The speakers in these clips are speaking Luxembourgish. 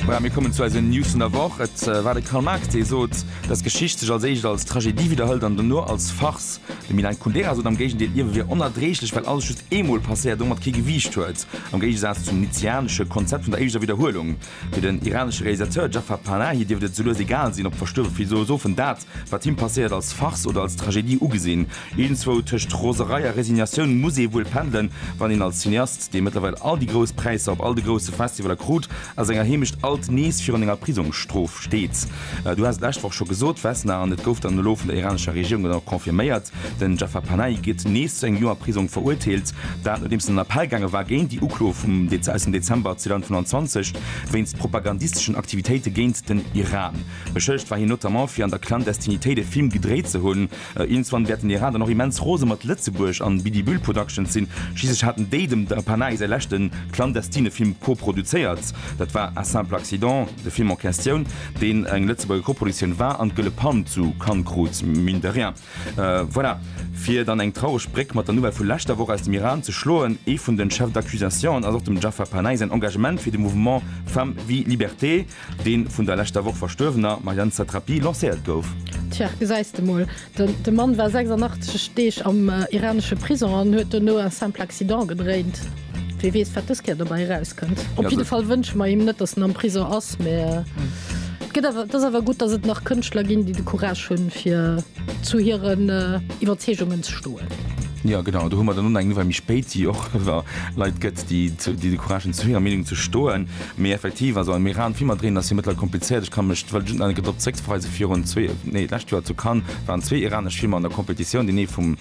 Voilà, mir kommen zu eisen News vun der Woch. Et war de Karl Marx, dee sot, dass Geschicht sech als éischt als Tragedie widderhëlt an dono als Farce. De Milan Kundera sot am Géigendeel, Ierwe wier onerdreeglech, well alles just eemol passéiert a domat kee Gewiicht huet, am Géigesaz zum nietzscheanesche Konzept vun der éischter Widderhuelung. Fir den iranesche Realisateur Jafar Panahi dierft et souloues egal sinn, ob d'Verstuerwe Philosophen dat, wat him passéiert, als Farce oder als Tragedie ugesinn. Iergendzwou tëscht Roserei a Resignatioun muss ee wuel pendelen, wann een als Cineast, dee mëttlerweil all déi grouss Präisser op all de grousse Festivaler krut, a senger Heemecht alt nees virun enger Prisongsstrof steet. Du has et lescht Woch scho gesot, Vesna, an et gouf dann elo vun der iranescher Regierung dann och confirméiert, Den Jafar Panahi gëtt nees zu engem Joer Prisong verurteelt. Dat nodeems en an Appell gaange war géint déi Uklo vum aus dem Dezember 2025 wéinst propagandisteschen Aktivitéite géint den Iran. Beschëllegt war hien notamment fir an der Clandestinitéit e Film gedréit ze hunn. Iergendswann wäerten déi Radern och immens rose mat Lëtzebuerg an Bidi Bühl Productions sinn. Schliisslech haten déi dem Panahi säi leschte clandestine Film koproduzéiert. Dat war Un simple accident, de Film en Questioun, deen eng Lëtzebuerger Koproduktioun war an d'Gëlle Palm zu Cannes krut, mine de rien. Voilà, fir dann eng traureg Bréck mat der Nouvelle vu leschter Woch aus dem Iran ze schloen, Ee vun de Chefs d'accusation ass och dem Jaffer Panahi säin Engagement fir de Mouvement Femmes, Vie, Liberté. Dee vun der leschter Woch verstuerwener Marianne Satrapi lancéiert gouf. Tja, gesäis de mol. De Mann war 86 Deeg am iranesche Prisong an huet duerno un simple accident gedréint. Wee weess, wat dës Kéier dobäi erauskënnt. Op jidde Fall wënsche mer him net, datt en am Prisong ass, mä et gëtt awer, et ass awer gutt, datt et nach Kënschtler ginn, déi de Courage hunn, fir zu hiren Iwwerzeegungen ze stoen. Jo, genau, do hu mer dann och nach eng Nouvelle méi spéit, déi och iwwer Leit gëtt, déi de Courage hunn, zu hirer Meenung ze stoen. Mee effektiv, also am Iran, Filmer dréinen ass jo mëttlerweil komplizéiert. Ech ka mech, well just nach eng Kéier drop zréckverweisen, virun zwee, nee d'lescht Joer zu Cannes waren zwee iranesch Filmer an der Competitioun, deen ee vum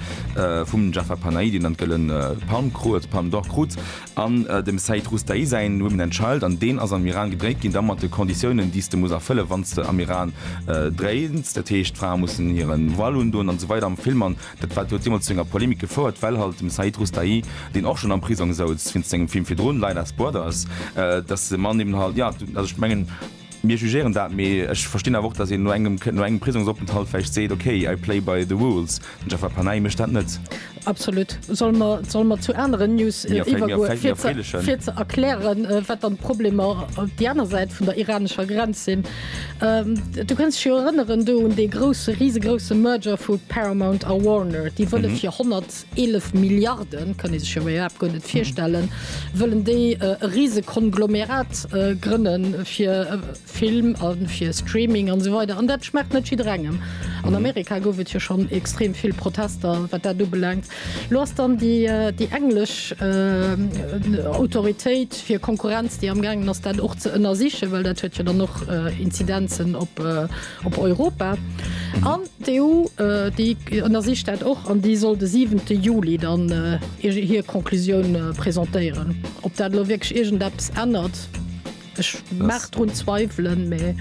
vum Jafar Panahi, deen dann d'Gëllen Palm krut, Palme d'Or krut, an dem Saeed Roustahi säin Women and Child, an deen ass am Iran gedréit ginn, da mat de Conditiounen, déi s de muss erfëllen, wann s de am Iran dréins, dat heescht d'Frae mussen hiren Voile undoen an esou weider am Film, an. Dat wat huet deemools zu enger Polemik gefouert, well halt dem Said Roustahi, deen och schonn am Prisong souz wéinst sengem Film virdrun, Light as Brothers, dass de Mann eben halt, jo, also ech mengen, mir jugéieren dat, mee ech verstinn awer och, dass een no engem, no engem Prisongsopenthalt vläicht seet, okay, I play by the rules. Den Jaffer Panahi mécht dat net. Absolut. Solle mer, solle mer zu aneren News iwwergoen, fir ze, fir ze erklären, wat dann d'Problemer déi aner Säit vun der iranescher Grenz sinn? Du kënns dech jo erënneren do un dee grousse, risegrousse Merger vu Paramount a Warner. Déi wëlle fir 111 Milliarden, kann ee sech jo iwwerhaapt guer net virstellen, wëllen déi e Risegkonglomerat grënne fir Film a fir Streaming an esou weider. An dat schmaacht net jidderengem. An Amerika gouf et jo schonn extrem vill Protester, wat dat ubelaangt. Lo ass dann déi englesch Autoritéit fir Konkurrenz, déi am gaangen ass, dat och ze ënnersichen, well dat huet jo dann och Inzidenzen op Europa. An d'EU, déi ënnersicht dat och an déi soll de siwente Juli dann hir Conclusioun presentéieren. Ob dat elo wierklech iergendeppes ännert? Ech mag drun zweiwelen, mä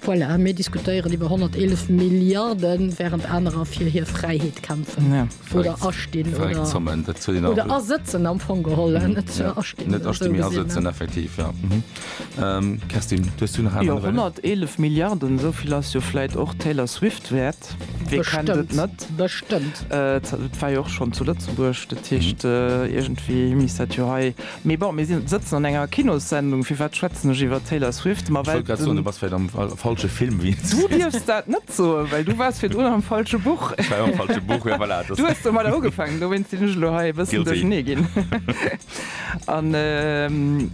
voilà, mir diskutéieren iwwer 111 Milliarden, während anerer fir hir Fräiheet kämpfen ja. oder astinn oder, zommen, oder asëtzen am Fong geholle mhm. net ja. astinn. Net astinn, mir asëtzen effektiv. Ja. Mhm. Ähm, Kerstin, du hast du nach ja, 111 Milliarden, sovill ass jo fläit och Taylor Swift wäert. Wie kennt et net? Bestëmmt. Äh, war jo och schon zu Lëtzebuerg, dat Hicht mhm. äh, irgendwie Miss dat jo hei Mee bon, mir sëtzen an enger Kinossendung, firwat schwätzen ech iwwer Taylor Swift? Ma well den. Du dierfs dat net soen, well du waars virdrun am falsche Buch. Du hues domadder ugefaangen, dowéinst sinn ech elo hei e bëssen duerchernee ginn. An den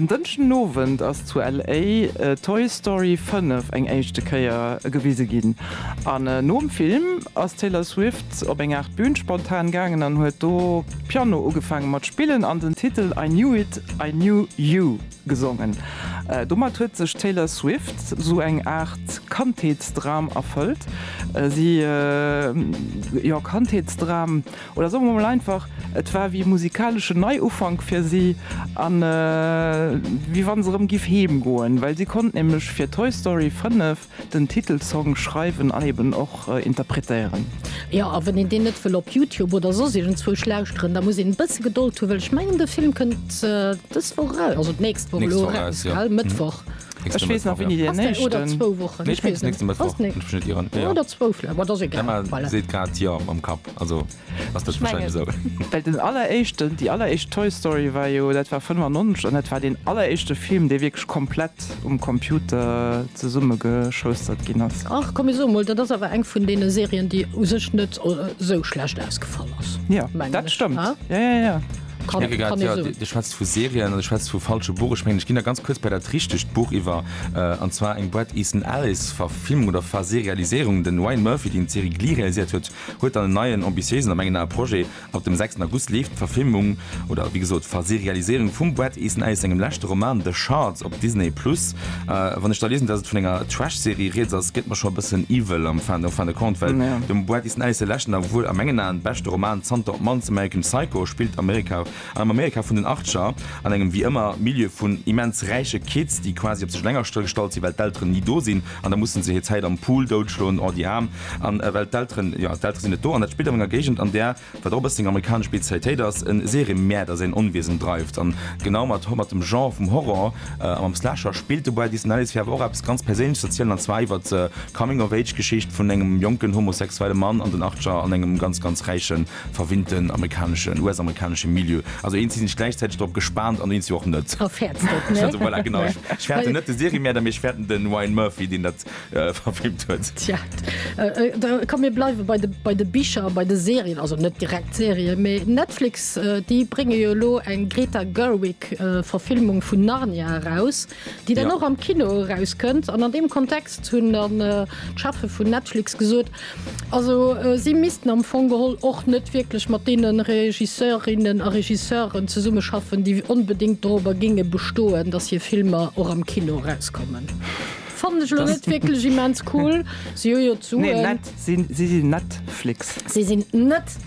Dënschden Owend ass zu LA Toy Story 5 eng éischte Kéier gewise ginn. An nom Film ass d'Taylor Swift. op eng Aart Bühn spontan gaangen an huet do Piano ugefaange mat spillen an den Titel I Knew It, I Knew You gesongen. Domat huet sech d'Taylor Swift sou eng Aart Kandheetsdram erfëllt. Si, jo, Kandheetsdram, oder soe mer emol einfach, et war wéi e musikalesche Neiufank fir si an wéi wann se erëm giff heem goen, well si konnt nämlech fir Toy Story 5 Den Titelsong schreiwen an eben och interpretéieren. Jo, a wann een deen net wëll op Youtube oder soss iergendzwousch lauschteren, da muss een e bësse Gedold hu, well ech mengen de Film kënnt dës Woch eraus, also d'nächst Woch elo eraus, well Mëttwoch. Ech weess nach wéini deen éischten. Oder zwou Wochen. Nee, ech mengen nächste Mëttwoch, wann ech mech net ieren. Oder zwou vläicht, ma dat ass egal. D'Emma seet grad jo mam Kapp, also. Ass dat wahrscheinlech esou? Well den alleréischten, déi alleréischt Toy Story war jo, dat war 95 an dat war deen alleréischte Film, dee wierklech komplett um Computer zesummegeschoustert ginn ass. Ach, komm, mir soe mol, dat ass awer eng vun deene Serien, déi u sech net esou schlecht ausgefall ass, Ja, mengen dat ech, stëmmt. ha? Ja, ja, ja. Ech Kann, mierke grad, kann ee ja, soen. Dir schwätzt vu Serien an Dir schwätzt vu falsche Buch. Ech mengen, ech ginn da ganz kuerz bei dat richtegt Buch iwwer, an zwar eng Bret Easton Ellis Verfilmung oder Verse-realiséierung. Den Ryan Murphy, deen d'Serie Glee realiséiert huet, Huet dann en neien, ambitiéisen a mengen Ae Projet. Ab dem 6 August leeft d'Verfilmung, oder wéi gesot, Verserialisierung vum Bret Easton Ellis sengem leschte Roman The Shards op Disney Plus. A wann ech da liesen, dass et vun enger Trash-Serie rieds ass, gëtt mer scho e bëssen iwwel am Fin fin de compte, well dem Bret Easton Ellis säi leschten a wuel a mengen Aen beschte Roman zanter Op Mann, American Psycho, spillt Amerika, Am Amerika vun den Achtger, an engem wéi ëmmer Milieu vun immens räiche Kids, déi quasi op sech eleng astëll gestallt sinn, well d'Elteren ni do sinn, an da musse se hir Zäit am Pool doutschloen, oh déi Aarm, an well d'Elteren, jo, d'Eltere sinn net do. An dat spillt an enger Géigend, an där, wat och e bësseng amerikanesch Spezialitéit ass, e Serienmäerder säin Onwiesen dreift. An genau mat mat dem Genre vum Horror a mam Slasher spillt de Bret Easton Ellis fir awer och eppes ganz Perséinleches z'erzielen, an zwar iwwert d'Coming-of-age-Geschicht vun engem jonken homosexuelle Mann an den Achtger an engem ganz, ganz räiche Verwinnten amerikaneschen, US-amerikaneschen Milieu. Also eens si sech gläichzäiteg drop gespaant an eens jo och net. A fäerts et net. Also voilà, genau. Ech fäerte net de Seriemärder, mee ech fäerten den Ryan Murphy, deen dat verfilmt huet. Tja, da komm mir bleiwe bei de, bei de Bicher a bei de Serien, also net direkt d'Serien, mee Netflix, déi brénge jo elo eng Greta Gerwig Verfilmung vun Narnia eraus. déi dann och am Kino erauskënnt an an deem Kontext hunn dann d'Cheffe vun Netflix gesot, also si missten am Fong geholl och net wierklech mat deene Regisseurinnen a Regisseuren zesummeschaffen, déi onbedéngt dorobber géinge bestoen, datt hir Filmer och am Kino erauskommen. Fannen ech elo net wierklech immens cool. Si hu jo d'Suen. Nee, net, si sinn Netflix. Si sinn net.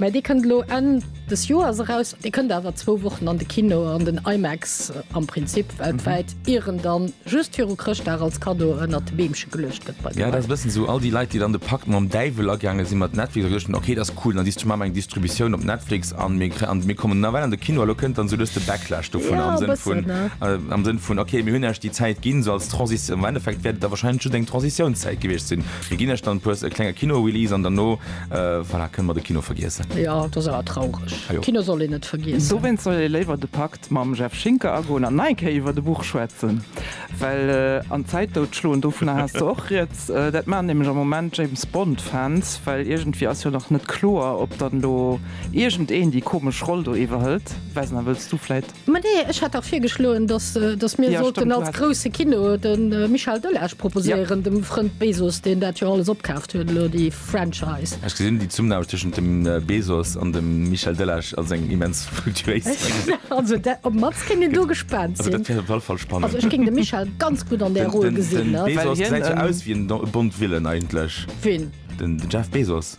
Mä dee kënnt elo Enn des Joers eraus. Dee kënnt awer zwou Wochen an de Kino, an den IMAX am Prinzip weltwäit, ier en dann just viru Chrëschtdag als Kaddo ënnert de Beemche geluecht gëtt bei de Leit. Ja, dat ass e bëssen esou, all déi Leit, déi dann de Pakt mam Däiwel agaange sinn, mat Netflix, hu geduecht, okay, dat ass cool, dann dis maache mer eng Distributioun op Netflix an mir kre an mir kommen nawell an de Kino. A lo kënnt dann esou lues de Backlash dovunner, am Sënn vun, am Sënn vun, okay, mir hunn iech déi Zäit ginn, esou als Transis, am Endeffekt wäert et da wahrscheinlech just eng Transitiounszäit gewiescht sinn, mir ginn iech dann e puer, e klenge Kinorelease an derno, Voilà, kënne mer de Kino vergiessen. Jo, dat ass awer traureg. Kino soll een net vergiessen. Dowéinst soll ee léiwer de Pakt mam Jeff Schinker agoen an nei Kéier iwwert e Buch schwätzen. Well an d'Zäit dout schloen, dovunner has de och Rieds, dat maachen nämlech am Moment James Bond-Fans, well iergendwéi ass jo nach net kloer, ob dann elo iergendeen déi komesch Roll do iwwerhëlt. Vesna, wëlls du vläit Ma nee, ech hat dach virgeschloen, datt datt mir sollten als grousse Kino de Michel Delage proposéieren, dem Frënd Bezos, deen dat jo alles opkaaft huet elo, déi Franchise. Ech gesinn déi Zumname tëschent dem Bezos an dem Michel Delage als eng immens fructuéis. Also dat, op Matz kéint een do gespaant sinn. Also dat wär op alle Fall spannend. Also ech géing de Michel ganz gutt an där Roll gesinn. Den Bezos gesäit jo aus wéi en Bond-Villain eigentlech. Wien? Den Jeff Bezos.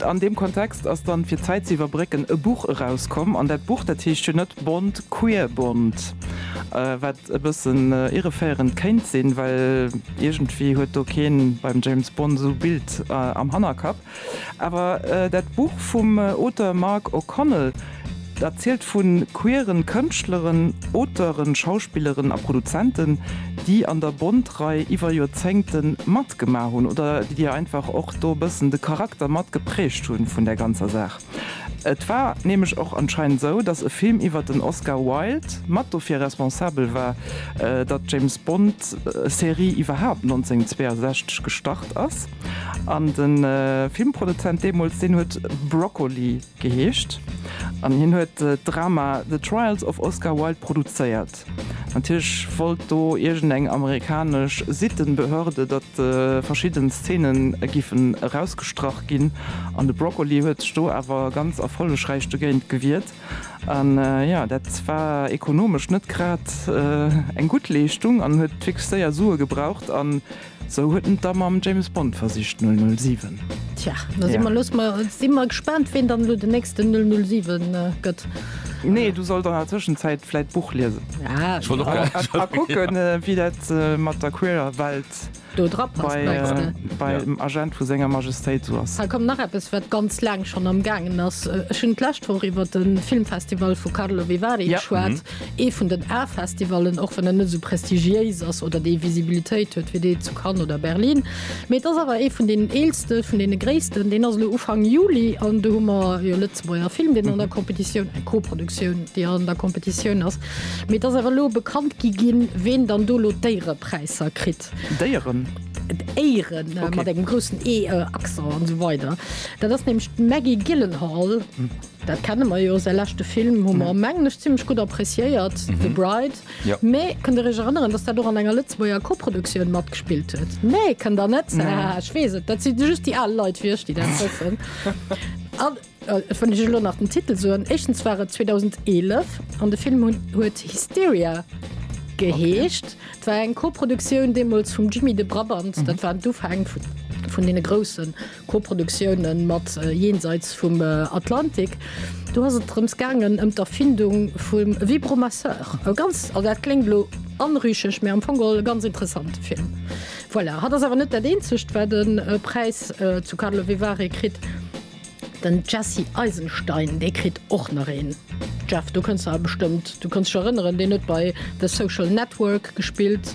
An deem Kontext ass dann, fir d'Zäit ze iwwerbrécken, e Buch erauskomm. An dat Buch, dat heescht jo net Bond, Queer Bond, wat e bëssen irreféierend kéint sinn, well iergendwéi huet do kee beim James Bond esou e Bild am Hannerkapp. Awer dat Buch vum Auteur Mark O'Connell, Dat zielt vu queeren Kënschtleren, Auteuren, Schauspilleren a Produzenten, déi an der Bond-Rei iwwer Joerzéngte matgemaach hunn oder déi einfach och do e bëssen de Charakter mat geprägt hu vun där ganzer Saach. Et war nämlech och anscheinend sou, datt e Film iwwer den Oscar Wilde mat dofir responsabel war, datt d'James Bond-Serie iwwerhaapt 1962 gestart ass. An de Filmproduzent deemools, deen huet Broccoli. Geheescht, an hien huet d'Drama The Trials of Oscar Wilde produzéiert. Natierlech wollt do iergend eng amerikanesch Sittenbehörde, datt verschidden Szenen giffen erausgestrach ginn, an de Broccoli huet sech do awer ganz erfollegräich dogéint gewiert. An jo, dat war ekonomesch net grad eng gutt Leeschtung, an huet fix séier Sue gebraucht. Sou huet en et da mam James Bond versicht, 007. Tja, da si mer, loosse mer, si mer gespaant, ween dann elo den nächsten 007 gëtt. Nee, du sollt an der Tëschenzäit vläit d'Buch liesen. Ah, Ech wollt och grad. A a kucken, wéi dat mat der queerer Welt Do drapasst, bei, mengs de? äh, bei Ja. dem Agent vu Senger Majestéit sou ass. Hei koum nach eppes, wat ganz laang schonn am gaangen ass. Ech hunn d'lescht Woch iwwer de Filmfestival vu Carlo Vivari Ja. geschwat. Ee vun den A-Festivallen, och wann en net esou prestigiéis ass oder déi Visibilitéit huet wéi dee zu Cannes oder Berlin. Mee et ass awer ee vun deenen eelste, vun deene gréissten. Deen ass elo Ufank Juli an do hu mer e Lëtzebuerger Film, deen an der Competitioun, eng Co-Produktioun, déi an der Competitioun ass. Mee et ass awer elo bekannt gi ginn, ween dann do elo d'Éierepräisser kritt. D'Éieren? D'Éieren, mat engem groussen Ee-Accent an esou weider. Dat ass nämlech d'Maggie Gyllenhaal. Dat kenne mer jo, säi leschte Film hu mer, mengen ech, zimlech gutt appreciéiert, The Bride. Mee kënnt Der Iech erënneren, datt dat och an enger Lëtzebuerger Koproduktioun matgespillt huet? Nee, kënnt Der net? Haha, ech weess et, dat si just déi al Leit wéi ech, déi dat wëssen. An et wëll ech Iech elo nach den Titel soen, éischtens war et 2011 an de Film huet Hysteria geheescht. Et war eng Koproduktioun deemools vum Jimmy de Brabant, dat waren d'Ufäng vun deene Groussen. Koproduktiounen mat Jenseits vum Atlantik, do ass et drëms gaangen ëm d'Erfindung vum Vibromasseur. E ganz, also dat kléngt elo anrüchig, mä am Fong geholl e ganz interessante Film. Voilà, hatt ass awer net dat eenzegt, wat e Präis zu Karlovy Vary kritt. Den Jesse Eisenstein, dee kritt och nach een. Jeff, do kënns de awer bestëmmt, du kënns dech erënneren, deen huet bei The Social Network gespillt.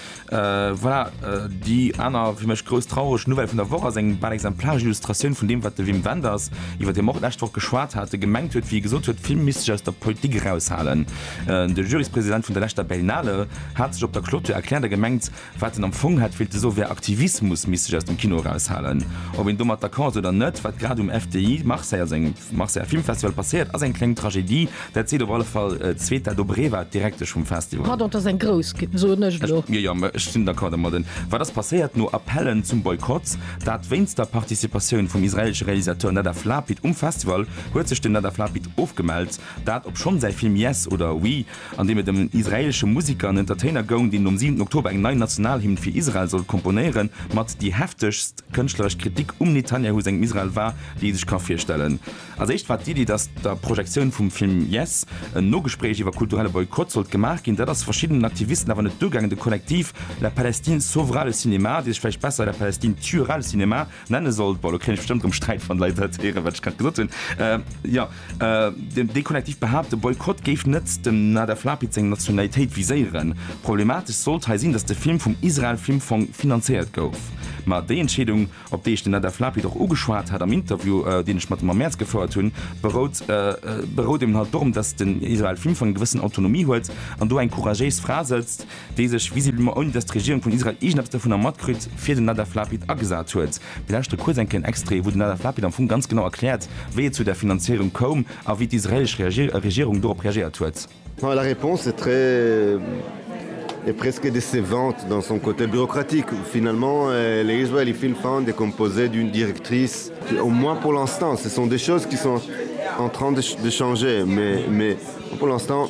Voilà, déi aner fir mech grouss traureg Nouvelle vun der Woch ass eng bal exemplaresch Illustratioun vun deem, wat de Wim Wenders, iwwert dee mer och d'lescht Woch geschwat hate, gemengt huet, wéi e gesot huet, d'Filme misste sech aus der Politik eraushalen. De Juryspräsident vun der leschter Berlinale hat sech op der Clôture erkläert a gemengt, wat en am Fong hätt wéilte soen, wär, Aktivismus misst sech aus dem Kino eraushalen. Ob een domat d'accord ass oder net, wat grad um FDI Marseille, also engem. Marseiller Filmfestival passéiert, ass eng kléng Tragedie. Dat seet op alle Fall d'Zweta Dobreva, d'Direktesch vum Festival. Pardon, et ass eng grouss, soen ech elo. Jo, jo, ech sinn d'accord domat. Wat ass passéiert? No Appellen zum Boykott, dat wéinst der Participatioun vum israelesche Realisateur Nadav Lapid um Festival, huet sech den Nadav Lapid ofgemellt. Dat, obschonn säi Film Yes oder Oui an deem et ëm en israeelesche Museker an Entertainer goung, deen nom siwenten Oktober eng nei Nationalhymn fir Israel sollt komponéieren. Mat déi heftegst kënschtleresch Kritik um Netanyahu sengem Israel war, déi ee sech ka virstellen. Als éischt war d'Iddi, datt der Projektioun vum Film Yes en Nogespréich iwwer kulturelle Boykott sollt gemaach ginn. Dat ass verschiddenen Aktivisten awer net duergaangen. De Kollektiv La Palestine sauvera le cinéma, dee sech vläicht besser La Palestine tuera le cinéma Nenne soll, bon elo kréien ech bestëmmt erëm Sträit wann d'Leit dat héieren, wat ech grad gesot hunn, jo, deen dee Kollektiv behaapt, de Boykott géif net dem Nadav Lapid seng Nationalitéit viséieren. Problematesch sollt hei sinn, datt de Film vum Israel Film Fong finanzéiert gouf. Ma déi Entscheedung, op déi ech den Nadav Lapid och ugeschwat hat am Interview, deen ech mat him am Mäerz gefouert hunn, berout berout eben halt dorëm, datt den Israel Film Fong eng gewëssen Autonomie huet an do eng couragéis Fra sëtzt, déi sech visiblement, ouni datt d'Regierung vun Israel iergendeppes dovunner matkritt, fir den Nadav Lapid agesat huet. Mir lauschtere kuerz eng kléng Extrait, wou den Nadav Lapid am Fong ganz genau erkläert, wéi et zu där Finanzéierung koum a wéi d'israelesch Regierung dorop reagéiert huet. La réponse est très et presque décevante dans son côté bureaucratique. Finalement, le Israeli Film Fund est composé d'une directrice, au moins pour l'instant, ce sont des choses qui sont en train de changer, mais pour l'instant,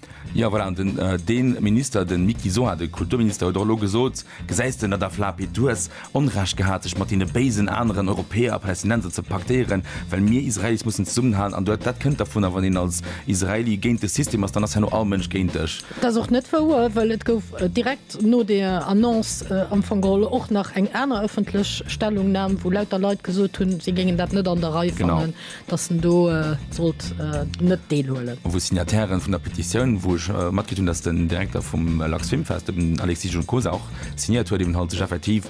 Jo, voilà, an den, deen Minister, den Miki Sohar, den Kulturminister, huet och elo gesot, Gesäis de, Nadav Lapid, du hues Onrecht gehat, sech mat deene béisen aneren Europäer a Palästinenser ze paktéieren, well mir Israelis mussen zesummenhalen. An dat kënnt dervunner, wann een als Israeli géint de System ass, dann ass herno all Mënsch géint dech. Dat ass och net wouer, well et gouf direkt no deer Annonce am Fong geholl och nach eng aner ëffentlech Stellungnam, wou lauter Leit gesot hunn, si géingen dat net an der Rei fannen. dass en do sollt net deelhuelen. Wou d'Signatairen vun der Petitioun, wou ech matkritt hunn, dass den Direkter vum LAX Filmfest, den Alexis Juncosa och signéiert huet, eben halt sech effektiv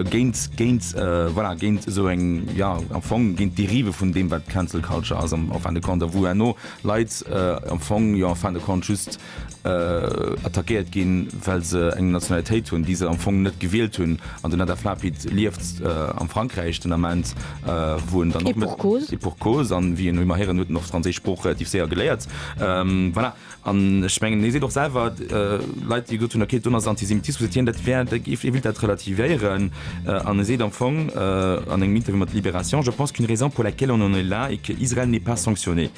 géint, géint, voilà, géint esou eng, jo, am Fong géint d'Dérive vun deem wat Cancel Culture ass am fin de compte a wou herno Leit am Fong, jo, en fin de compte just, attackéiert ginn, well se eng Nationalitéit hunn, déi se am Fong net gewielt hunn. An den Hadaf Lapid lieft am Frankräich den Ament, wou en dann. Et pour cause. Et pour cause. An wéi een ëmmer héieren, huet en och d'franséisch Sprooch relativ séier geléiert. Voilà. An ech mengen, hie seet och selwer, Leit, déi gesot hunn, okay, d'UNO ass Antisemitismus, seet hien, dat wär, hie wéilt dat relativéieren. An e seet am Fong an engem Interview mat Libération, Je pense qu'une raison pour laquelle on en est là est que Israël n'est pas sanctionné.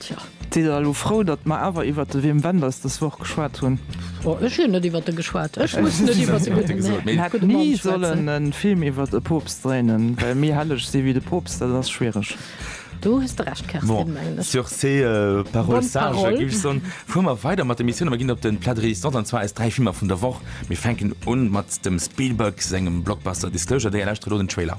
Tja. Sidd der elo frou, datt mer awer iwwert de Wim Wenders dës Woch geschwat hunn? Oh, ech hunn net iwwert e geschwat. Ech muss net iwwert e gudde Mä, e gudde Mann schwätzen. Mir hätte ni sollen e Film iwwert e Poopst dréinen, well méi helleg si wéi de Poopst, dat ass schwiereg. Do hues de Recht, Kerstin, mengen ech. Sur ces paroles sages géif ech soen, fuere mer weider mat der Emissioun a mer ginn op de Plat de résistance, an zwar eis dräi Filmer vun der Woch. Mir fänken un mat dem Spielberg sengem Blockbuster Disclosure. Dir lauschtert elo den Trailer.